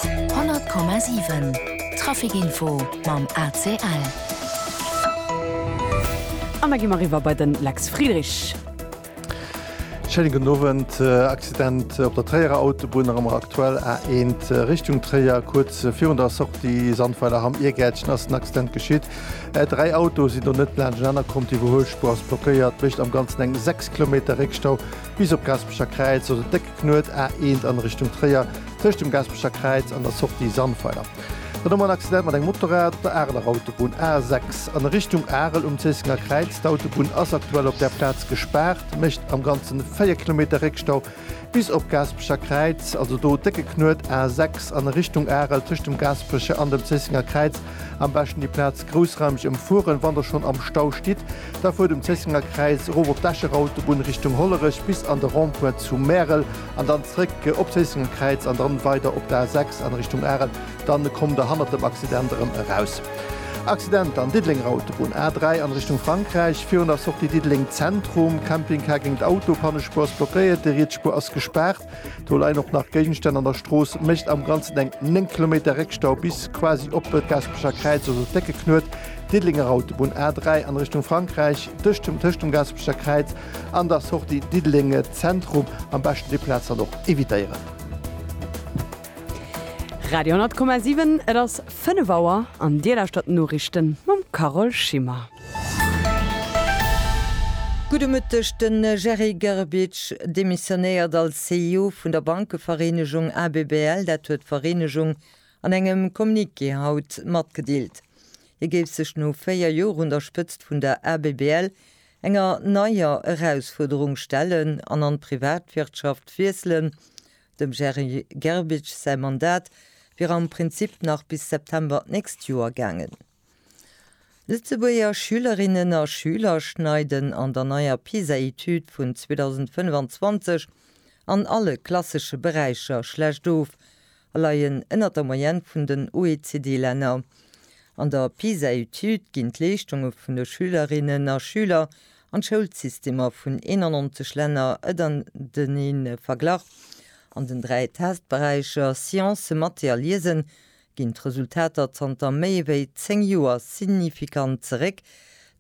100,7 Trafic Info mam ACL. An da gi mer eriwwer bei den Lex Friedrich. Schéinen gudden Owend. Accident op der Tréierer Autobunn erëm an aktuell A1 Richtung Tréier. Kuerz virun der Sortie Sandweiler Hamm, Iergäertchen ass den Accident geschitt. Dräi Autoe sinn do net laanscht enaner komm. D'Iwwerhuelspuer ass blockéiert. Mécht am ganzen eng 6 Kilometer Réckstau bis op Gaspecher Kräiz. Also déck Knuet, A 1 an Richtung Tréier tëscht dem Gaspecher Kräiz an der Sortie Sandweiler. Dann hu mer en Accident mat engem Motorrad op der Areler Autobunn, A 6 an Richtung Arel um Zéissenger Kräiz. D'Autobunn ass aktuell op där Plaz gespaart, mécht am ganzen 4 Kilometer Réckstau bis op Gaspecher Kräiz. Also do décke Knuet, A 6 an Richtung Arel tëscht dem Gaspecher an dem Zéissenger Kräiz. Am beschten déi Plaz groussraumeg ëmfueren, wann der schonn am Stau stitt. Da fuert um Zéissenger Kräiz erof op d'Escher Autobunn Richtung Hollerech bis an de Rond-point zu Märel an dann zréck op Zéissenger Kräiz an dann weider op der A6 an Richtung Arel. Dann kommt der hannert dem Accident erëm eraus. Accident an Diddelenger Autobunn A3 an Richtung Frankräich virun der Sortie Diddeleng Zentrum. Camping-Car géint Auto, Pannespuer ass blockéiert, déi riets Spuer ass gespaart. Do leien och nach Géigenstänn an der Strooss, mécht am Ganzen eng 9 Kilometer Réckstau bis quasi op de Gaspecher Kräiz, also d'Décke Knuet, Diddelenger Autobunn A3 an Richtung Frankräich, tëscht dem tëscht dem Gaspecher Kräiz an der Sortie Diddelenge Zentrum. Am beschten déi Plaz dann och evitéieren. Radio 10,7, et ass 5 Auer an Dir lauschtert d'Noriichten mam Carole Schimmer. Gudde Mëtteg, De Jerry Grbic demissionéiert als CEO vun der Bankevereenegung ABBL. Dat huet d'Vereenegung an engem Communiqué haut matgedeelt. Hie géif sech no 4 Joer un der Spëtzt vun der ABBL enger neier Erausfuerderung stellen an an d'Privatwirtschaft wiesselen. Dem Jerry Grbic säi Mandat wier am Prinzip nach bis September d'nächst Joer gaangen. Lëtzebuerger Schülerinnen a Schüler schneiden an der neier PISA-Etüd vun 2025 an alle klassesche Beräicher schlecht of a leien ënnert der Moyenne vun den OECD-Länner. An der PISA-Etüd ginn d'Leeschtunge vun de Schülerinnen a Schüler an d'Schoulsystemer vun 91 Länner ënnertenee verglach. An den dräi Testberäicher Science, Mathe a Liesen ginn d'Resultater zanter méi wéi 10 Joer signifikant zeréck.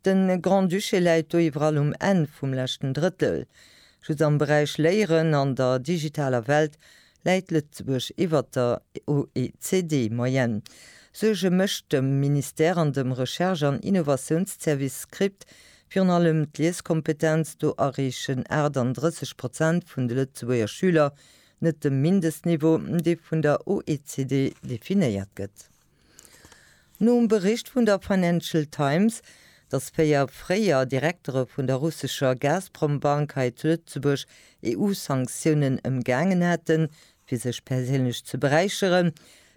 De Grand-Duché läit do iwwerall um Enn vum leschten Drëttel. Just am Beräich Léieren an der digitaler Welt läit Lëtzebuerg iwwer der OECD-Moyenne. Suerge mécht dem Ministère an dem Recherche an Innovatiounsservice Script virun allem d'Lieskompetenz, do erreechen 38 Prozent vun de Lëtzebuerger Schüler net dem Mindestniveau, dee vun der OECD definéiert gëtt. Nom Bericht vun der Financial Times, dass véier fréier Direktere vun der russescher Gazprom-Bank hei zu Lëtzebuerg EU-Sanktiounen ëmgaangen hätten, fir sech perséinlech ze beräicheren,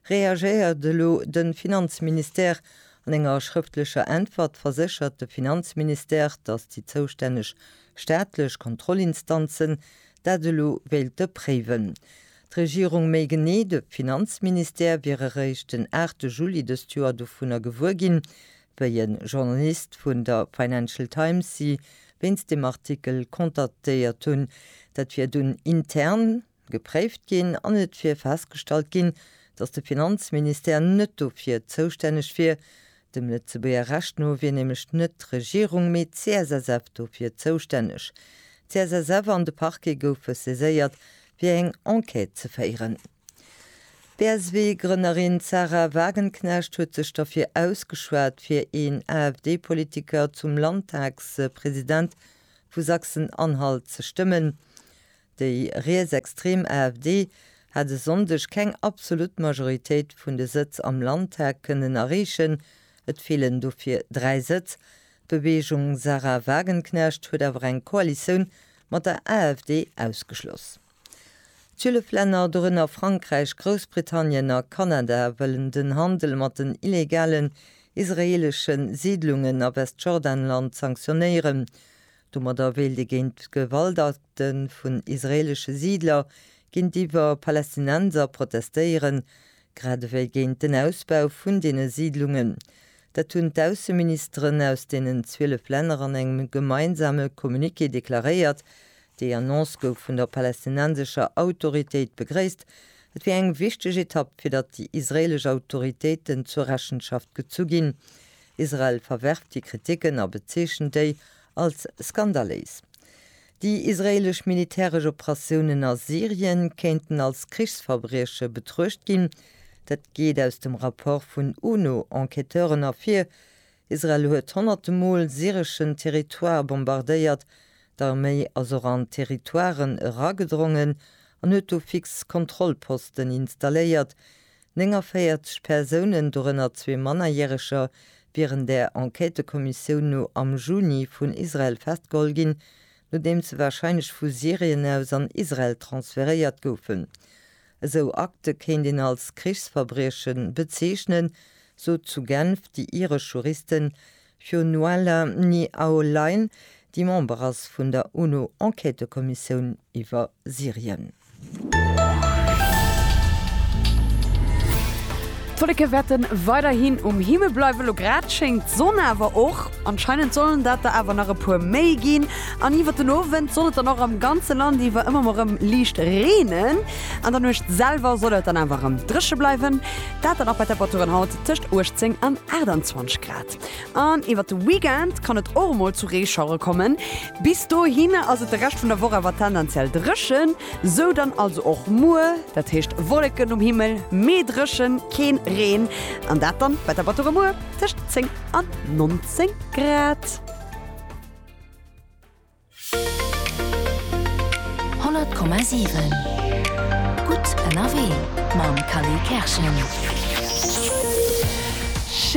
reagéiert elo de Finanzministère. An enger schrëftlecher Äntwert verséchert de Finanzministère, dass déi zoustänneg staatlech Kontrollinstanzen dat elo wéilte préiwen. D'Regierung méi genee de Finanzministère wier eréischt den 8 Juli dëst Joer dovunner gewuer ginn, wéi e Journalist vun der Financial Times si wéinst deem Artikel kontaktéiert hunn. Dat wier dunn intern gepréift ginn an et wier festgestallt ginn, datt de Finanzministère net dofir zoustänneg wier, Dem Lëtzebuerger Recht no wier nämlech net d'Regierung, mee d'CSSF dofir zoustänneg. D'CSSF an de Parquet goufe saiséiert, fir eng Enquête ze féieren. D'BSW-Grënnerin Sahra Wagenknecht huet sech derfir ausgeschwat, fir een AfD-Politiker zum Landtagspresident vu Sachsen-Anhalt ze stëmmen. Déi rietsextrem AfD hat e Sonndeg keng absolut Majoritéit vun de Sëtz am Landtag kënnen erreechen, et feelen dofir dräi Sëtz. D'Beweegung Sahra Wagenknecht huet awer eng Koalitioun mat der AfD ausgeschloss. Zwielef Länner, dorënner Frankräich, Groussbritannien a Kanada, wëllen den Handel mat den illegalen israeelesche Siidlungen a Westjordanland sanktionéieren. Domadder wéilt ee géint d'Gewaltakte vun israeelesche Siidler géintiwwer Palästinenser protestéieren, grad ewéi géint den Ausbau vun deene Siidlungen. Dat hunn d'Ausseministeren aus deenen 12 Länner an engem gemeinsame Communiqué deklaréiert. Déi Annonce gouf vun der palästinensescher Autoritéit begréisst. Et wier eng wichteg Etapp, fir datt déi israeelesch Autoritéiten zur Rechenschaft gezu ginn. Israel verwerft déi Kriticken a bezeechent déi als skandaléis. Déi israeelesch militäresch Operatiounen a Syrien kéinten als Krichsverbrieche betruecht ginn. Dat geet aus dem Rapport vun UNO-Enquêteuren ervir. Israel huet honnerte Mol syreschen Territoire bombardéiert. D'Arméi ass och an Territoiren eragedrongen an huet do fix Kontrollposten installéiert. 49 Persounen, dorënner zwee Mannerjäreger, wieren der Enquêtëkommissioun no am Juni vun Israel festgeholl ginn, nodeem se warscheinlech vu Syrien aus an Israel transferéiert goufen. Esou Akte kéint een als Krichsverbrieche bezeechnen, sot zu Genf déi iresch Juristin Fir Nuala Ni Aolain, déi Member ass vun der UNO-Enquêtëkommissioun iwwer Syrien. D'Wolleke wäerten weiderhin um Himmel bleiwen, elo grad schéngt d'Sonn awer och. Anscheinend sollen dat der awer nach e puer méi ginn an iwwert den Owend soll et dann och am ganze Land iwwer ëmmer mol rem liicht reenen. An der Nuecht selwer soll et dann awer rem dréche bleiwen, dat dann och bei Temperaturen haut tëscht 18 an 28 Grad. An iwwert de Weekend kann et och mol zu Reeschauere kommen. Bis dohinner ass et de Rescht vun der Woch awer tendenziell dréchen. Sou dann also och muer, dat heescht Wolleken um Himmel, mee dréchen, keen Reen. An dat dann bei Temperature muer tëscht 10 an 19 Grad. 100,7 Gutt ënnerwee mam Kally Kerschen.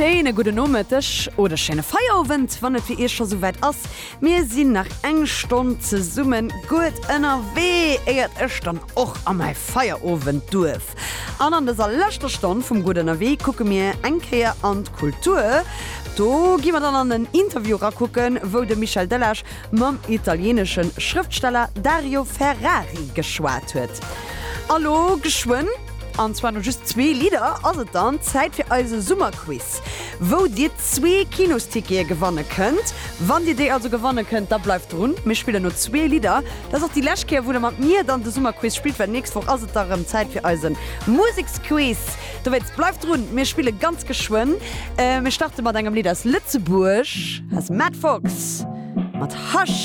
Schéine gudden Nomëtteg oder schéine Feierowend, wann et fir Iech scho souwäit ass. Mir sinn nach eng Stonn zesumme gutt ënnerwee, éiert ech dann och a mäi Feierowendduerf An an dëser leschter Stonn vum Gutt Ënnerwee kucke mir eng Kéier an d'Kultur. Do gi mer dann an en Interview erakucken, wou de Michel Delage mam italieenesche Schrëftsteller Dario Ferrari geschwat huet. A lo geschwënn, an zwar no just zwee Lidder, ass et dann Zäit fir eise Summerquiz, wou Dir zwee Kinostickete gewanne kënnt. Wann Dir déi also gewanne kënnt, da bleift drun, mir spillen no zwee Lidder. Dat ass déi lescht Kéier wou der mat mir dann de Summerquiz spillt, well nächst Woch ass et da rëm Zäit fir eise Museksquiz. Dowéinst bleift drun, mir spille ganz geschwënn. Mir starte mat engem Lidd aus Lëtzebuerg, aus Matt Fox mat Hush.